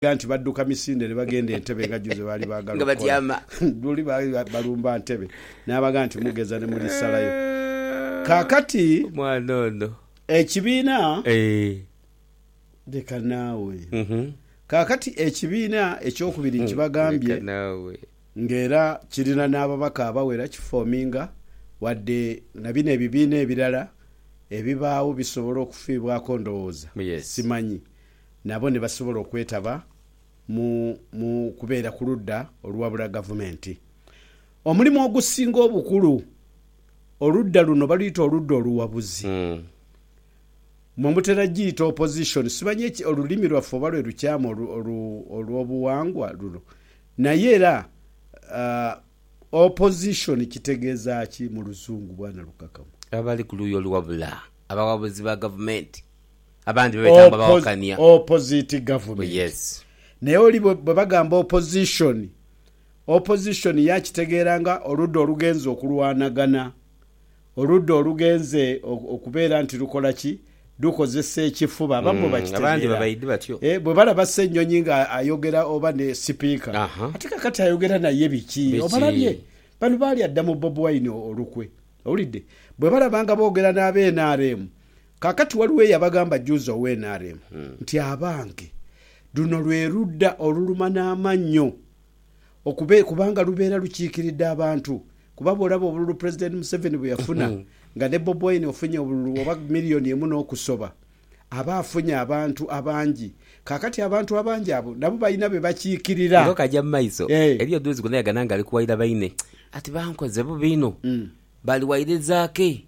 Baligha nti badduka misinde ne baghenda e Ntebe nga jjo ze baali baagala okukola. Luli baali balumba Ntebe n'abagha nti mugeza ne muli salayo. Kaakati ekibiina, leka naawe, kaakati ekibiina eky'okubiri nkibagambye, ng'era kirina n'ababaka abawera kifoominga, wadde na bino ebibiina ebirala ebibaagho bisobola okufiibwako ndowooza, simanyi. nabo ni basobola okwetaba mu mu kubeera ku ludda oluwabula gavumenti. Omulimu ogusinga obukulu oludda luno baluyita oludda oluwabuzi. Mwe mutera giyita opposition, simanyi olulimi lwaffe oba lwe lukyamu olw'obuwangwa luno. Naye era opposition kitegeeza ki mu Luzungu, Bwana Lukakanwa? Abali ku luuyi oluwabula, abawabuzi ba gavumenti. abandi bebeta mbu abawakania. Oppo, opposite government. Oh yes. Naye oli bwe, bwe bagamba opposition, opposition ye akitegeera nga oludda olugenze okulwanagana, oludda olugenze o, okubeera nti lukola ki? Lukozesa ekifuba. Abamu bwe Mm, abandi bakitegeera. babaidhi batyo. Eh, bwe balaba Ssenyonyi nga ayogera oba ne sipiika, Aha. ate kakati ayogera naye biki? Biki? Obalabye? Bano baalya dda mu Bob Wine o, olukwe. Owulidde? Bwe balaba nga boogera n'aba nrm, Kaakati ghaligho eyabagamba juuzi owa nrm nti abange luno lwe ludda oluluma n'amannyo okube kubanga lubeera lukiikiridde abantu kuba bw'olaba obululu Pulezidenti Museveni bwe yafuna nga ne Bob Wine ofunye obululu oba million emu n'okusoba aba afunye abantu abangi kaakati abantu abangi abo nabo balina be bakiikirira. Nga okaja mu maiso, eriyo duuzi gwena yagana nga ali kuwaira baine ati bankoze bubi inho, bali wairiza ki?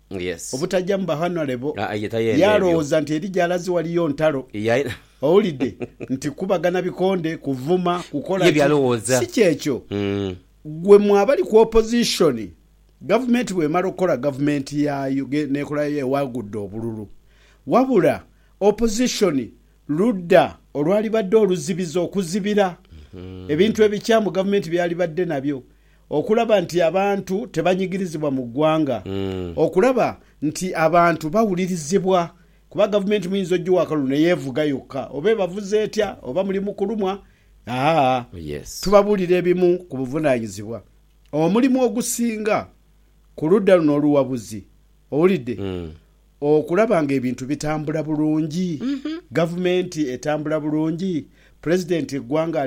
obutaja mu bahanale bo. Ye alowooza nti eri gy'alaze waliyo ntalo. Owulidde nti kukubagana bikonde, kuvuma, kukola ki? Si ky'ekyo. Ggwe mu abali ku opposition, gavumenti bw'emala okukola gavumenti yaayo n'ekola yaayo ewagudde obululu. Wabula opposition ludda olwalibadde oluzibizi, okuzibira ebintu ebikyamu gavumenti by'alibadde nabyo. Okulaba nti abantu tebanyigirizibwa mu ggwanga. Okulaba nti abantu bawulirizibwa. Kuba gavumenti muyinza ogiwa akalulu ne yeevuga yokka oba ebavuze etya oba muli mu kulumwa. Haa. Tubabuulira ebimu ku buvunaanyizibwa. Omulimu ogusinga ku ludda luno oluwabuzi. Owulidde? Okulaba nga ebintu bitambula bulungi, gavumenti etambula bulungi, Pulezidenti eggwanga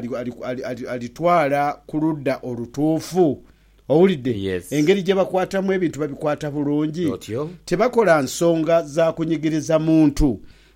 alitwala ku ludda olutuufu. Owulidde? Engeri gye bakwatamu ebintu babikwata bulungi. Tebakola nsonga za kunyigiriza muntu.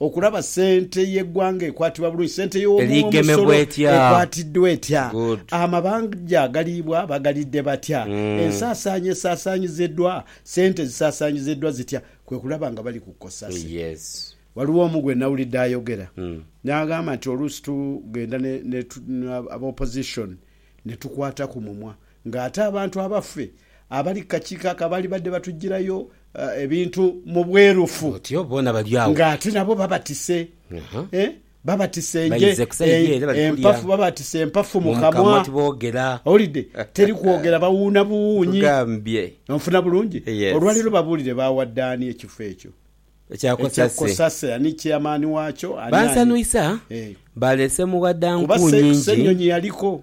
Okulaba sente y'eggwanga ekwatibwa bulungi, sente y'omuwomusolo ekwatiddwa etya, amabanja agaliibwa bagalidde batya, ensaasaanya esaasaanyiziddwa, sente zisaasaanyiziddwa zitya, kwe kulaba nga bali ku cosase. Waliwo omu gwe nawulidde ayogera n'agamba nti oluusi tugenda ne, ne, ne, aba opposition ne tukwata ku mumwa Nga ate abantu abaffe abali ku kakiiko ako abaali badde batujjirayo ebintu mu bwerufu, nga ate nabo babatise babatise nje empafu, babatise empafu mu kamwa. Owulidde? Teri kwogera, bawuuna buwuunyi. Onfuna bulungi? Olwa leero babuulire baawadde ani ekifo ekyo ekya Kosase, ani chairman waakyo, ani, ani. Kuba se, se nnyonyi yaliko.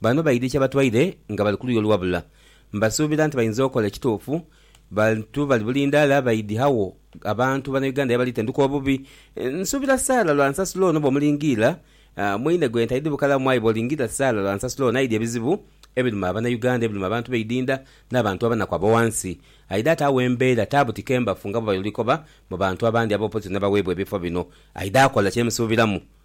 Bano baidhi kyebatwaire nga bali kuluya oluwabula mbasuubira nti bainza okola ekituufu bantu bali bulindaala baidhi agho abantu bana Uganda yebali tenduka obubi nsuubira Sarah lwansasula ono bwomulingiira mwine gwe ntaidhi bukalamu aye bwolingiira Sarah lwansasula ono aidhi ebizibu ebiruma abana Uganda ebiruma abantu beidinda nabantu abanaku abowansi aidhi ate agho embeera taabu tikembafu nga bwebayolikoba mubantu abandi abopozisoni abaweebwa ebifo bino aidhi akola kyemusuubiramu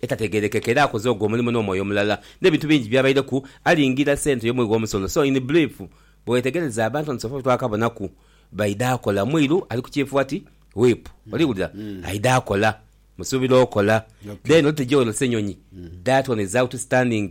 etategerekeka era akoze ogwo omulimu n'omwoyo omulala n'ebintu bingi byabaireku alingira sente y'omuwi w'omusolo so in brief bwewetegereza abantu on sofa betwakabonaku baidha kola mwiru ali ku kyifuati whip oliwulira aidha kola musuubira okola then olitegeera ono ssenyonyi that one is outstanding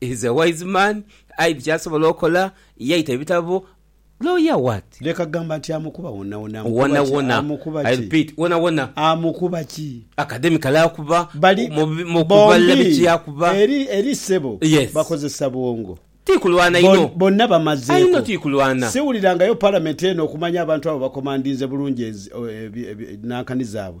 He's a wise man, aidhi kyasobola okola yaita ebitabo lawyer what? Leka gamba nti amukuba wonawona amukuba ki wonawona amukuba I ki repeat wonawona amukuba ki? academically akuba Bali mu bi- mu kubala bombi biki akuba eri eri ssebo Yes. bakozesa bwongo tikulwana Bon- inho bonna ainho bamazeeko tikulwana siwulirangayo parliament eno okumanya abantu abo bakomandinze bulungi enzi- o- ebi- ebi- nankani zaabwe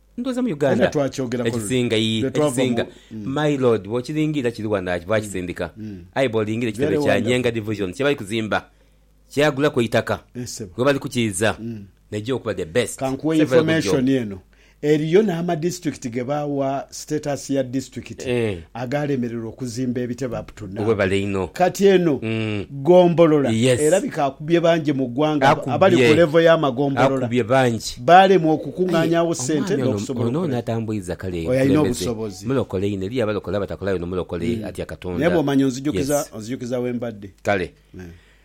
Ndhowooza mu Uganda ekisinga, yii, ekisinga, my Lord, bw'okilingiira kiri wano aye baakisindika, aye bw'olingiira ekitebe kya Nyenga Division kye bali kuzimba, kyagulaku eitaka we bali kukiiza, n'eija okuba the best. Ka nkuwe information eno, eriyo n'amadistrict ge baawa status ya district agaalemererwa okuzimba ebitebe. Webale inho. Kati eno gombolola erabika akubye bangi mu ggwanga abali ku levo ya magombolola baalemwa okukungaanya agho ssente n'okusobola okukola. Oyo alina obusobozi. Naye bw'omanya onzijukiza onzijukiza we mbadde.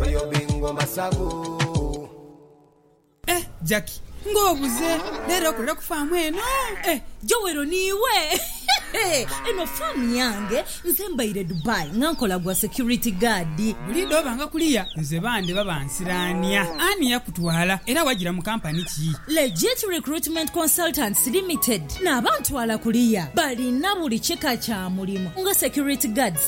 Royal Bingo Masavu. Eh Jackie nga obuze lero okolera ku farm eno eh. Joel niiwe hehe eno farm yange nze mbaire Dubai nga nkola gwa security guard. Buliidho obanga kuliya nze bande baba nsiraania ani yakutwala era wajira mu company ki? Legit Recruitment Consultants Limited nabantwala kuliya balina buli kika kya mulimu nga security guards,